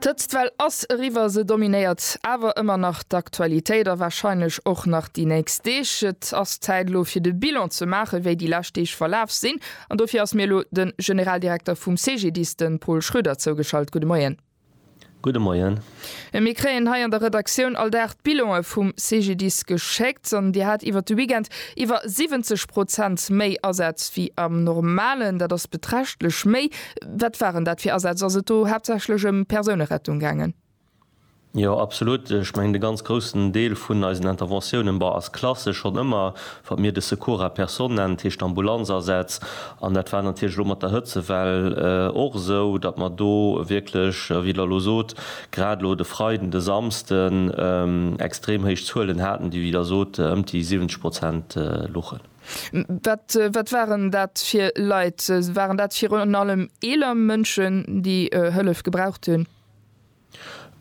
D'Hëtztwell ass eriwwer, se dominéiert awer ëmmer nach d'Aktualitéit a warscheinlech och nach déi nächst Deeg. Et ass Zäit elo fir de Bilan ze maachen, wéi déi lescht Deeg verlaf sinn an dofir ass mir elo de Generaldirekter vum CGDIS, de Paul Schroeder zougeschalt. Gudde Moien. Gudde Moien. A mir kréien hei an der Redaktioun all Dag d'Bilonë vum CGDIS geschéckt. An Dir hat iwwert de Weekend iwwer 70 Prozent méi Asätz wéi am Normalen. Dat ass beträchtlech méi. Wat waren dat fir Asätz? Ass et do haaptsächlech ëm Persounerettung gaangen? Jo, absolut. Ech mengen, de ganz groussen Deel vun eisen Interventiounen, bon, ass klassesch schonn ëmmer Wat mir de Secours à personne nennen, dat heescht Ambulanzasätz, an dat war natierlech elo mat der Hëtzewell och esou, datt mer do wierklech, wéi Der elo sot, grad elo de Freiden, de Samsden extrem héich Zuelen haten, déi, wéi Der sot, ëmt déi 70 Prozent luchen. Wat waren dat fir Leit? Waren dat virun allem eeler Mënschen, déi Hëllef gebraucht hunn?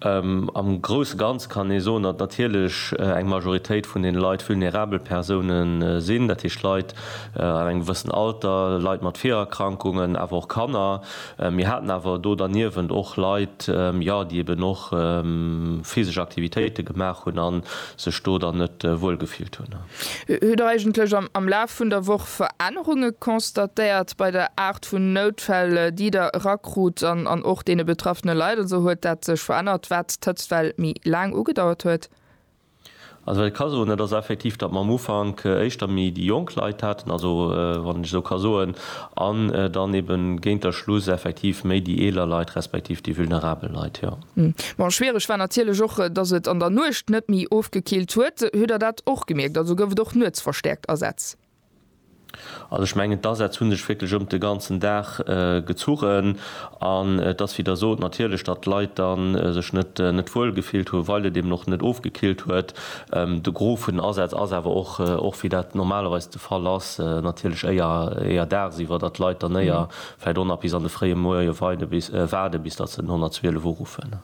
Am grousse Ganze kann ee soen, datt natierlech eng Majoritéit vun den Leit vulnerabel Persoune sinn, dat heescht Leit an engem gewëssen Alter, Leit mat Virerkrankungen, awer och Kanner. Mir haten awer do derniewent och Leit, jo, déi eben och physesch Aktivitéite gemaach hunn a sech do dann net wuel gefillt hunn. Hutt Der eigentlech am Laf vun der Woch Verännerunge constatéiert bei der Aart vun Noutfäll, déi Der erakrut an och deene betraffene Leit? Also huet dat sech verännert, wat d'Hëtztwell méi laang ugedauert huet? Also wat ech ka soen, dat ass effektiv, datt mer am Ufank éischter méi déi jonk Leit haten, also wann ech esou ka soen, an dann eeben géint der Schluss effektiv méi déi eeler Leit, respektiv déi vulnerabel Leit, jo. Bon, schwiereg war natierlech och, dass et an der Nuecht net méi ofgekillt huet. Hutt Der dat och gemierkt? Also gouf et och nuets verstäerkt Asätz? Also ech mengen, d'Asätz hu sech wierklech ëm de ganzen Dag gezunn. An et ass, wéi Der sot, natierlech, datt d'Leit da sech net wuel gefillt hunn, well et eben och net ofgekillt huet. De Gros vun den Asätz ass awer och, och wéi dat normalerweis de Fall ass, natierlech éier dagsiwwer, datt d'Leit dann éier vläit och nach bis an de fréie Moie weide bis waarde bis datt se den 112 uruffen.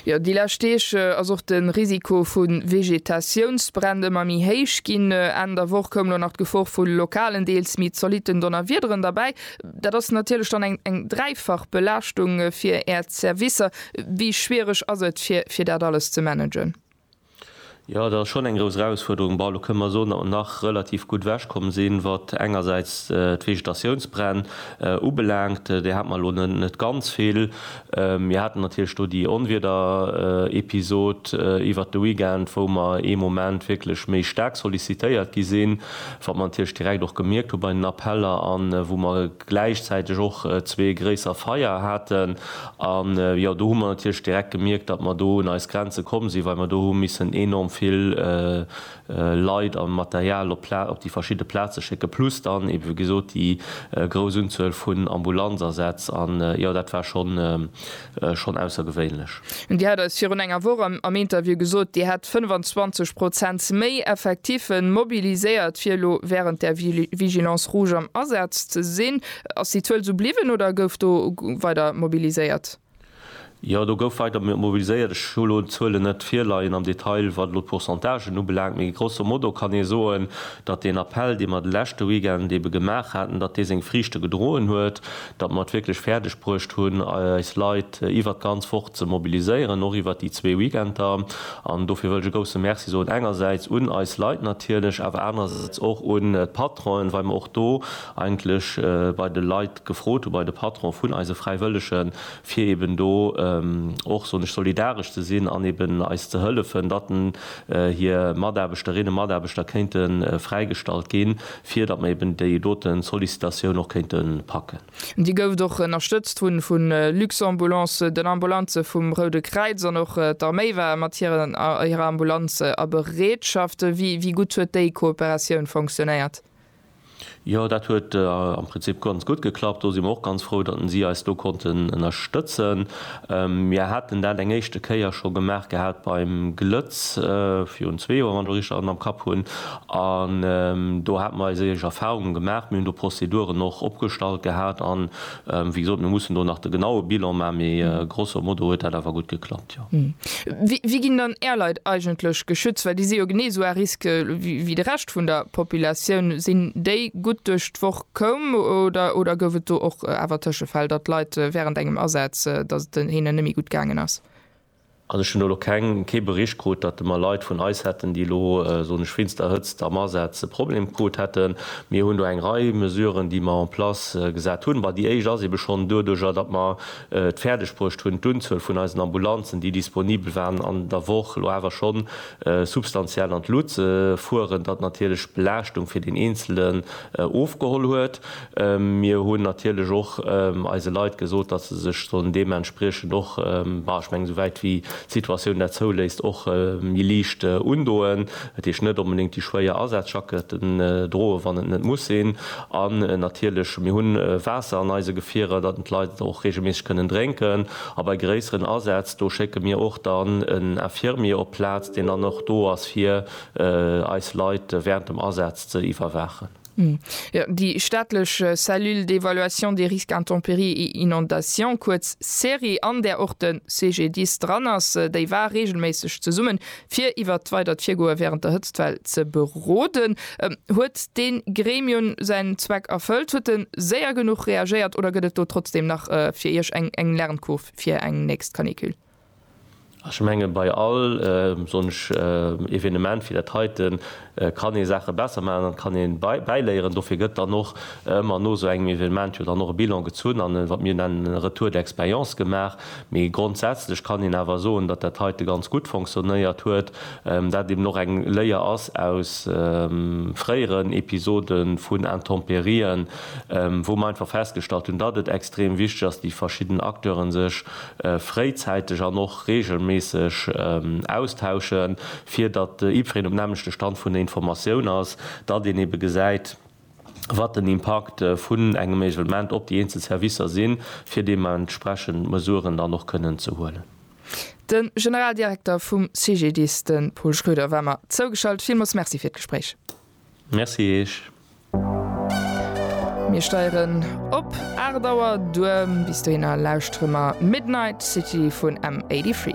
Jo, déi lescht Deeg ass och de Risiko vu Vegetatiounsbränn ëmmer méi héich ginn. Enn der Woch koum elo nach d'Gefor vu lokalen, deels méi zolitten Donnerwiederen derbäi. Dat ass natierlech dann eng dräifach Belaaschtung fir Äert Servicer. Wéi schwiereg ass et fir dat alles ze managen? Jo, dat ass schonn eng grouss Erausfuerderung. Bon, elo kënnen mer soen, datt mer nach relativ gutt ewech komm sinn, wat engersäits d'Vegetatiounsbränn ubelaangt. Där hate mer elo net ganz vill. Mir haten natierlech do déi Onwiederepisod iwwert de Weekend, wou mer ee Moment wierklech méi staark sollicitéiert gi sinn, wat mer natierlech direkt och gemierkt hu bei den Appeller an wou mer gläichzäiteg och zwee gréisser Feier haten an jo do hu mer natierlech direkt gemierkt, datt mer do un eis Grenze komm sinn, well mer do hu missen enorm vill Leit a Material op d'Pla op déi verschidde Plaze schécken, plus dann ebe wéi gesot déi grouss Unzuel vun Ambulanzasätz an jo dat war schonn schonn aussergewéinlech. Dir hat eis virun enger Woch am Interview gesot, Dir hätt 25 Prozent méi Effektiffe mobiliséiert, fir elo wärend der Vigilance rouge am Asaz ze sinn. Ass déi Zuel esou bliwwen oder gouf do weider mobiliséiert? Jo, do gouf weider mobiliséiert. Ech hu elo d'Zuelen net virleien am Detail, wat elo d'Pourcentagen ubelaangt. Mee grosso modo kann ee soen, datt deen Appell, dee mer de leschte Weekend ebe gemaach haten, datt dee seng Friichte gedroen huet. datt mer et wierklech fäerdeg bruecht hunn, eis Leit iwwert d'ganz Woch ze mobiliséieren, och iwwert déi zwee Weekender. An dofir wëll ech e grousse Merci soen, engersäits un eis Leit natierlech, awer anersäits och un d'Patronen, well mer och do eigentlech bei de Leit gefrot hunn, bei de Patronen vun eise Fräiwëllegen, fir eeben do och, soen ech, solidaresch ze sinn an eeben eis ze hëllefen, datt hir Mataarbechterinnen a Mataarbechter kéinte fräigestallt ginn. fir datt mer eben déi doten Sollicitatioun och kéinten packen. Déi gouft och ënnerstëtzt vun vun Luxambulance, den Ambulanzen vum Roude Kräiz an och d'Arméi war mat hiren hirer Ambulanz a Bereetschaft. Wéi wéi gutt huet déi Kooperatioun fonctionnéiert? Jo, dat huet am Prinzip ganz gutt geklappt. Do si mer och ganz frou, datt si eis do konnten ënnerstëtzen. Mir haten dat eng éischte Kéier scho gemaach gehat beim Glëtz virun zwee Joer, wann ech et richteg am Kapp hunn, An do hate mer eis eeg Erfahrungen gemaach. Mir hunn do Prozeduren och opgestallt gehat. An, wéi gesot, mir mussen do nach de genaue Bilan maachen, mee grosso modo huet dat awer gutt geklappt, jo. Wéi ginn dann Är Leit eigentlech geschützt? Well déi si jo genee esou à risque wéi de Rescht vun der Populatioun. Sinn déi gutt duerch d'Woch koum oder gouf et do och awer Tëschefäll, datt Leit wärend engem Asaz, datt et hinnen net méi gutt gaangen ass? An ech hunn elo keng, kee Bericht krut, datt de mer Leit vun eis hätten, déi elo, soen ech, wéinst der Hëtzt am Asaz e Problem krut hätten. Mir hunn do eng Rei Mesuren, déi mer en place gesat hunn. Bah, déi éischt ass eebe schonn doduerjer, datt mer et fäerdeg bruecht hunn, d'Unzuel vun eisen Ambulanzen, déi disponibel waren an der Woch, elo awer schonn substantiell an d'Lut ze fueren, datt natierlech d'Belaaschtung fir deen Eenzelen ofgeholl huet. Mir hunn natierlech och eise Leit gesot, datt se sech sollen deementspriechend och, ma ech mengen, esouwäit wéi d'Situatioun dat zouléisst, och méi liicht undoen. Dat heescht, net onbedéngt déi schwéier Asazjacketten droen, wann et net muss sinn. An natierlech, mir hunn Waasser an eise Gefierer, datt d'Leit et och reegelméisseg kënnen drénken. A bei gréisseren Asätz, do schécke mir och dann en Infirmier op d'Plaz, deen dann och do ass, fir eis Leit wärend dem Asaz ze iwwerwaachen. Jo, déi staatlech Cellule d'évaluation des risques intempéries et inondations, kuerz CERI, an där och de CGDIS dran ass, déi war reegelméisseg zesummen, fir iwwert d'weidert Virgoe wärend der Hëtztwell ze beroden. Huet dee Gremium säin Zweck erfëllt? Huet e séier genuch reagéiert oder gëtt et do trotzdeem nach fir Iech eng Lernkurv fir eng nächst Canicule? Ech menge bei all, soen ech, Evenement wéi dat heiten, kann ee Saache besser maachen an et kann ee bäiléieren. Dofir gëtt dann och ëmmer no esou engem Evenement jo dann och e Bilan gezunn an e, wat mir nennen, e Retour d'expérience gemaach. Mee grondsätzlech kann een awer soen, datt dat heite ganz gutt fonctionnéiert huet, dat eben och eng Léier ass aus fréieren Episode vun Intempérien, wou mer einfach festgestallt hunn, datt et extrem wichteg ass, déi verschidden Acteure sech fréizäiteg an och reegelméisseg austauschen, fir datt jiddwereen um nämmlechte Stand vun der Informatioun ass, datt een ebe gesäit, wat den Impakt vun engem Isolement op déi eenzel Servicer sinn, fir deementsprechend Mesuren dann och kënnen ze huelen. De Generaldirekter vum CGDIS, de Paul Schröder, war mer zougeschalt. Villmools Merci fir d'Gespréich. Merci eech. Mir steieren op 8 Auer duer. Bis dohinner lauschtere mer Midnight City vun M83.